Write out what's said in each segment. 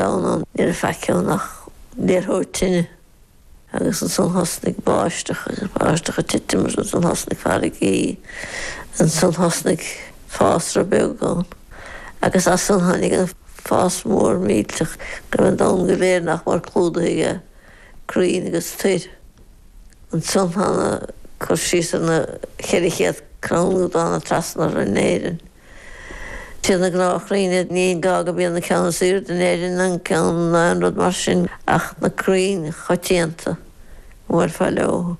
domhan, ní raibh faic ann ach liathróid tine agus ansan thosnaigh báisteach agus báisteach ag titim agus ansan thosnaigh farraigí ansan thosnaigh fásra beag ann agus as san tháinig an fás mór millteach go raibh an domhan go léir nach mór clúdaithe aige crainn agus toir. Ansan tá an cur síos ar na cheithre chéad crann úd a thána trasna orthu in Éirinn. Sé na gnáthchrainn é, ní gá go mbíonn an ceann is aoirde in Éirinn an ceann ná aon rud mar sin ach na crainn choitianta a bhuailfeá leo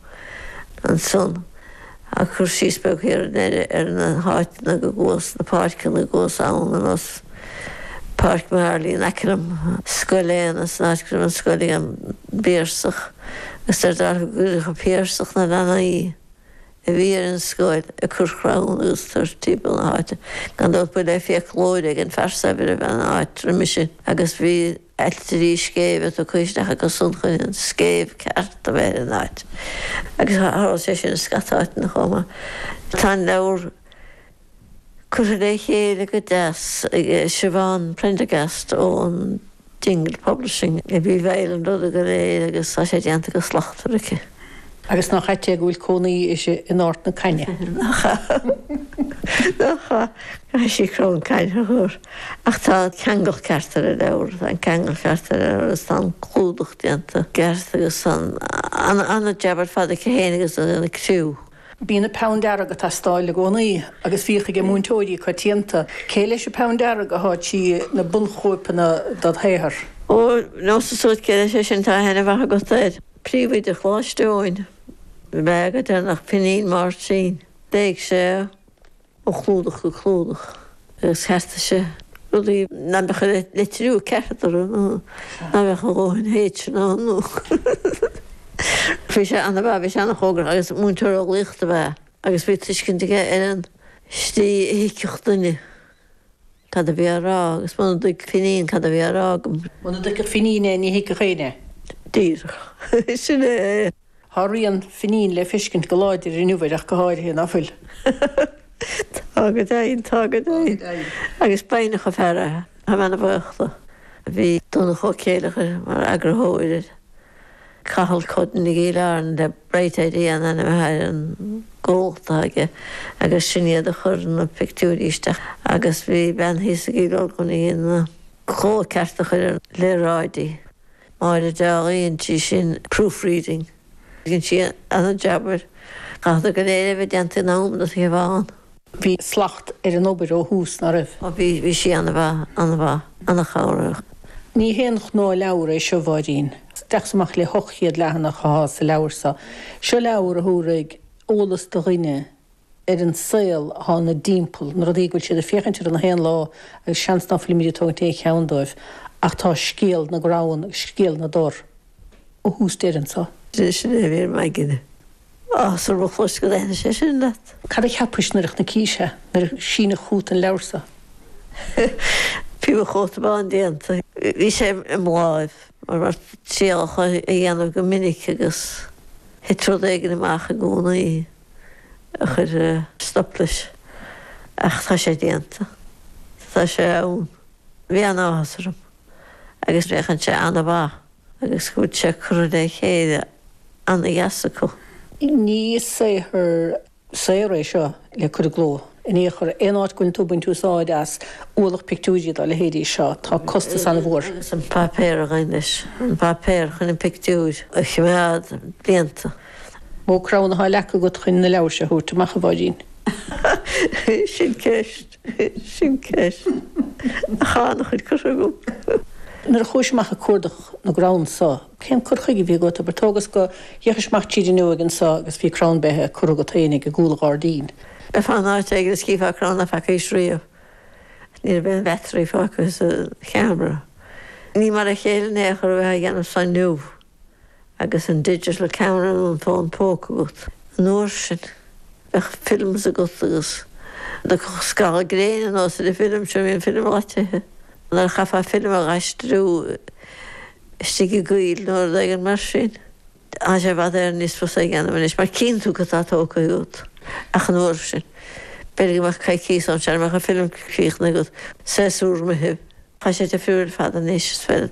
ansan ag cur síos beag thiar in Éirinn ar na háiteanna go gcuas na páirceanna go gcuas ann ar nós Páirc Mharley in aice liom, Scoil Éanna san áit go raibh an scoil ag an bPiarsach agus de réir dealraimh go gcuireadh an Piarsach na leanaí. a bhí ar an scoil ag cur crann agus tor timpeall na háite. Gan dabht ba le fiaclóir éigin, fear saibhir a bhí an áit roimis sin agus bhí ailtirí scéimhe tugtha isteach acusan chun an scéimh ceart a bheith ar an áit. Agus tharla sé sin i scata áiteanna chomh maith. Tá an leabhar. curtha le chéile go deas ag Siobhán Prendergast ón Dingle Publishing a bhí i bhfeighil an ruda go léir agus tá sé déanta go slachtmhar aici. Agus nach ait é go bhfuil cónaí uirthi in Ard na Caithne? Nach ait é? Nach ait? Caithfidh sí crann caithne a chur. Ach tá an ceangal ceart ar an leabhar, tá an ceangal ceart ar an leabhar agus tá an clúdach déanta i gceart agus tá an-jab ar fad aici féin agus an criú. Bíonn an peann dearg ag teastáil i gcónaí agus bhíodh aige múinteoirí coitianta. Cé leis an peann dearg a chuaigh trí na bunchóipeanna dod shaothar? Ó, neosadsa duit cé leis é sin tá aithne mhaith agat air? Príomhoide Choláiste Eoin. Bheadh agat ar nach Finín Máirtín. Léigh sé. Ó chlúdach go clúdach agus cheartaigh sé rudaí ná beadh an litriú ceart orthu nó ná beadh a dhóthain H ann nó Bhí sé an-mhaith, bhí sé an-chúramach agus múinteoir eolaíochta ab ea é agus bhí tuiscint aige ar an tslí a thuigfeadh duine cad a bhí á rá agus muna dtuigfeadh Finín cad a bhí á rá agam, Muna dtuigfeadh Finín é, ní thuigfeadh éinne é. Díreach. Sin é é. Tá rian Finín le feiscint go láidir inniu air ach go háirithe, ná fuil? Tá go deimhin, tá go deimhin. Agus b'fhoighneach an fear é, táim an-bhuíoch de. Bhí Donncha Ó Céileachair mar eagarthóir air. Cathal Cudden i gCill Airne le Bright Idea an ainm atá ar an gcomhlacht aige agus sin iad a chuir na pictiúirí isteach agus bhí bean thíos i gCill Orglan a dhein na cóipchearta a chur ar léaráidí. Máire Deághaidh, an tí sin, proofreading. Dhein sí an-jab air. Chaithfeadh sé go léir a bheith déanta in am do Shiobhán. Bhí slacht ar an obair ó thús, nach raibh? Ó bhí, bhí sí an-mhaith, an-mhaith, an-chabhrach. Ní haon ghnáthleabhar é seo, a Mháirín. Isteach is amach le hocht chéad leathanach atá sa leabhar seo. Seo leabhar a thabharfaidh eolas do dhuine ar an saol atá ina dtimpeall, na rudaí go bhfuil siad ag féachaint orthu gach aon lá agus seans nach bhfuilimid ag tógaint aon cheann dóibh ach tá scéal na gcrann agus scéal na dtor ó thús deireadh anseo. Sin sin a bhí ar maidin. Á, sar mo chluais go dtaitnigh sé sin leat. Cad a cheapais nuair a chonaicís é, nuair a síneadh chút an leabhar so? Bhí mo chóta bán déanta. Bhí sé i mo láimh, mar bheadh triail a chur a dhéanamh go minic agus thit rud éigin amach i gcónaí. a chuir stop leis. Ach tá sé déanta. Tá sé ann. Bhí an-áthas orm. Agus féachann sé an-mhaith. Agus go bhfuil sé curtha le chéile an-deas acu. Ní saothar saor é seo le cur i gcló in aon chor. Aon áit go bhfuil tú ag baint úsáid as ualach pictiúirí dá leithéidí seo, tá costas an-mhór. Agus an páipéar a ghabhann leis. An páipéar chun an pictiúir a choimeád blianta. Mó crann atá leagtha agat chun an leabhair seo a thabhairt amach, a Mháirín. Sin ceist, sin ceist. Ach tá an-chuid curtha agam. Nuair a chuais amach ag cuardach na gcrann so, cén cur chuige a bhí agat? Abair, tógas gur fhéachais amach tríd an fhuinneog anso agus bhí crann beithe curtha agat féinig i gcúl an ghairdín. Bheifeá in áit éigin is chífeá crann nach bhfeacaís riamh. Ní raibh aon bheatairí fágtha sa cheamara. Ní mar a chéile in aon chor a bheith á dhéanamh so inniu. agus an digital camera nó an fón póca agat. An uair sin, bheadh films agat agus dá dtagadh gal gréine anuas ar an film seo, bhí an film loitithe nuair a chaithfeá film a dh'aistriú istigh i gcoill nó rud éigin mar sin. Tá sé i bhfad Éireann níos fusa a dhéanamh anois mar chíonn tú cad tá tógtha agat. Ach an uair sin, b'fhéidir go mbeadh coicíos ann, sara mbeadh an film críochnaithe agat, séasúr imithe. Tá sé difriúil ar fad anois, is féidir.